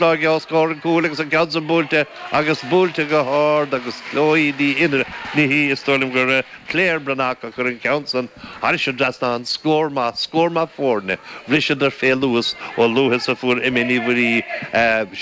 An gceann os comhair an chúil agus an ceann san buailte agus buailte go hard agus Chloe Ní Fhinneadha is dóigh liom gur Claire Breathnach a chuir an ceann san thairis an dtrasnán an scór maith scór maith foirne bhriseadar fé luas chomh luath is a fuair Emma Ní Mhuirí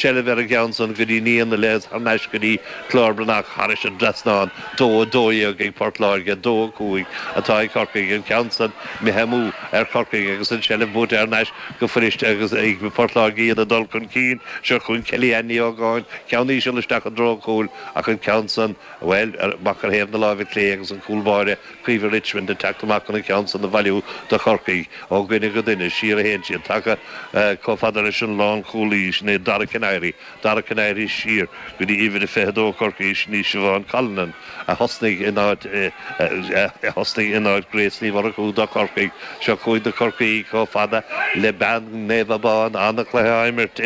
seilbh ar an gceann san go dtí ndiaidh na leigheas thar n-ais go dtí Claire Breathnach thairis an dtrasnán 2:12 ag Port Láirge 2:05 atá ag Corcaigh an ceann san imithe amú ar Chorcaigh agus an tseilbh buaite thar n-ais go fuirist agus ag Port Láirge iad ag dul chun cinn. Seo chugainn Kellyanne Ní Ógáin, ceann íseal isteach i dtreo cúil, ach an ceann san, bhuel, amach ar thaobh na láimhe clé agus an cúlbáire Caoimhe Richmond ag teacht amach chun an ceann san a bhailiú do Chorcaigh. Ó dhuine go duine, siar a théann siad, tagtha chomh fada leis an lánchúlaí, sin é Dara Kiniry, Dara Kiniry siar go dtí uimhir a 22 Chorcaí sin í Siobhán Callanan a thosnaigh in áit a thosnaigh in áit Grace Ní Mhurchú do Chorcaigh. Seo cúig do Corcaí chomh fada le bean Naomh Abán ana-chluiche á imirt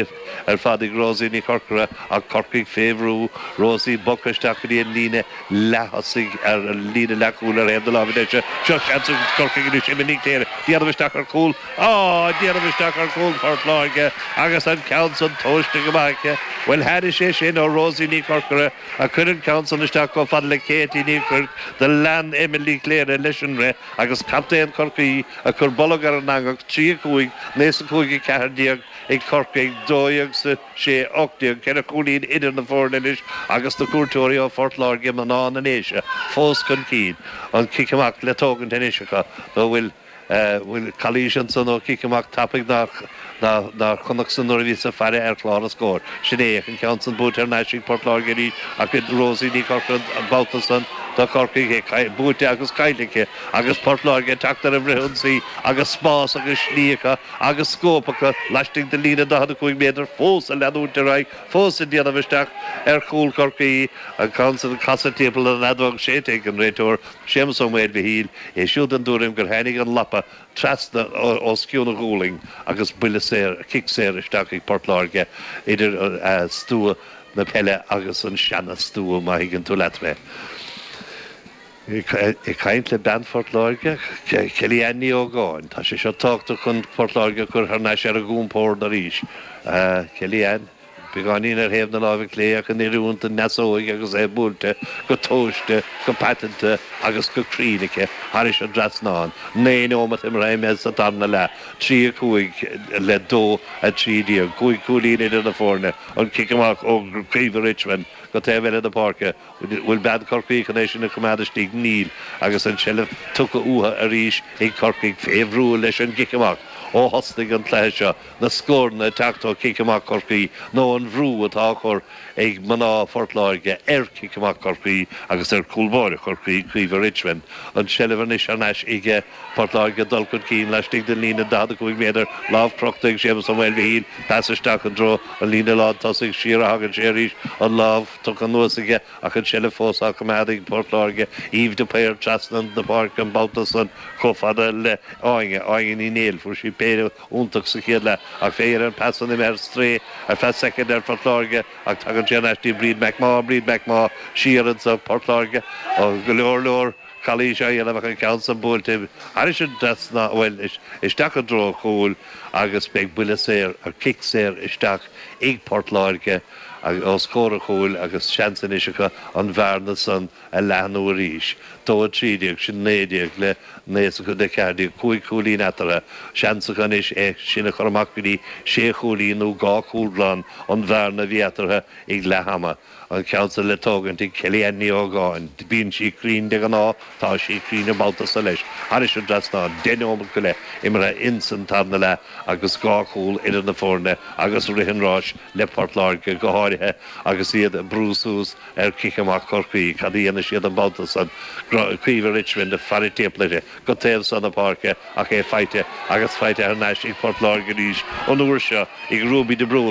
ar fad ag Rosie Ní Chorcora ach Corcaigh fé bhrú. Rosie bogtha isteach go dtí an líne. leath-thosaigh ar an líne leathchúil ar thaobh na láimhe deise. Seo seans ag Corcaigh anois Emma Ní Chléirigh. Déanamh isteach ar chúl. Á! Déanamh isteach ar chúl Phortláirge agus an ceann san tomhaiste go maith aici. Bhuel tháinig sé sin ó Rosie Ní Chorcora a chuir an ceann san isteach chomh fada le Katie Ní Chuirc do lean Emma Ní Chléirigh leis an rith agus captaen Chorcaí a chuir bolg ar an eangach 3-5 9 is a 5 14 ag Corcaigh 12 is a sé ocht déag, ceithre chúilín idir na foirne anois agus na cuairteoirí ó Phort Láirge, mná na nDéise fós chun cinn. An cic amach le tógaint anois acu nó an bhfuil bhfuil calaois ansan ó cic amach tapaidh nár nár chonac san nuair a bhíos ag faire ar chlár an scóir? Sin é an ceann san buaite thar n-ais ag Port Láirge arís ach Rosie Ní Chorcora an babhta san do Chorcaigh, é buaite agus caillte aici agus Port Láirge ag teacht ar an bhfrith-ionsaí agus spás agus slí acu agus scóip acu laistigh de líne 45 méadar fós ag leanúint ar aghaidh, fós ag déanamh isteach ar chúl Chorcaí. An ceann san casta timpeall an fheadóg séidte ag an réiteoir, Séamus Ó Maoilmhichíl, é siúd den dtuairim gur tháinig an lapa trasna os cionn a ghualainn agus buille saor, cic saor isteach ag Port Láirge idir stua na peile agus an seana-stua, má thuigeann tú leat mé. Ag caint le bean Phort Láirge, Kelly Ann Ní Ógáin, tá sé seo tábhachtach chun Port Láirge a chur thar n-ais ar a gcompord arís. Kelly Ann, beagáinín ar thaobh na láimhe clé ach in oiriúnt don deasóig agus é buailte go tomhaiste, go paiteanta agus go cruinn aici thairis an dtrasnán. Naoi nóimeat imeartha againn sa tarna leath, trí a cúig le dó a trí déag. Cúig cúilín idir na foirne, an cic amach ó Caoimhe Richmond go taobh eile na páirce, Bhfuil bean Chorcaí chun é sin a choimeád istigh? Níl agus an tseilbh tugtha uathu arís ag Corcaigh fé bhrú leis an gcic amach. Ó thosnaigh an cluiche seo, na scóranna ag teacht ó chic amach Chorcaí nó an bhrú atá á chur ag mná Phort Láirge ar chic amach Chorcaí agus ar chúl báire Chorcaí, Caoimhe Richmond. An tseilbh anois thar n-ais aige Port Láirge, dul chun cinn laistigh den líne 45 méadar, lámh crochta ag Séamus Ó Maoilmhichíl, pas isteach i dtreo an líne lán tosaigh, siar a thagann sé arís, an lámh. tugtha anuas aige ach an tseilbh fós á coimeád ag Port Láirge. Eve de Paor trasna na páirce an babhta san chomh fada le Áine, Áine Ní Néill. Fuair sí péire iontach sa chéad leath ach b'fhéidir an pas san imithe ar strae ar feadh soicind ar Phort Láirge ach tagann sé ar ais go dtí Bríd Mac Mágha, Bríd Mac Mágha siar ansan Port Láirge. Go leor leor calaois á éileamh ach an ceann san buailte thairis an dtrasnán, bhuel isteach i dtreo chúil agus beidh buille saor, cic saor isteach ag Port Láirge. Os comhair an chúil agus seans anois acu an bhearna san a leathnú arís. Dó a trí déag, sin naoi déag le naoi déag le ceathair déag, cúig chúilín eatarthu. Seans acu anois é sin a chur amach go dtí sé chúilín nó dhá chúl glan, an bhearna a bhí eatarthu ag leath ama. An ceann san le tógaint ag Kellyann Ní Ógáin. Bíonn sí cruinn de ghnáth, tá sí cruinn an babhta so leis. Thairis an dtrasnán, deich neomat go leith imeartha ins an tarna leath. agus dhá chúl idir na foirne agus rith an ráis le Port Láirge, go háirithe agus iad ag brú suas ar chic amach Chorcaí. Cad a dhéanfaidh siad an babhta seo? Caoimhe Richmond, faire timpeall uirthi go taobh seo na páirce ach é faighte agus faighte thar n-ais ag Port Láirge arís, an uair seo ag Ruby de Brún.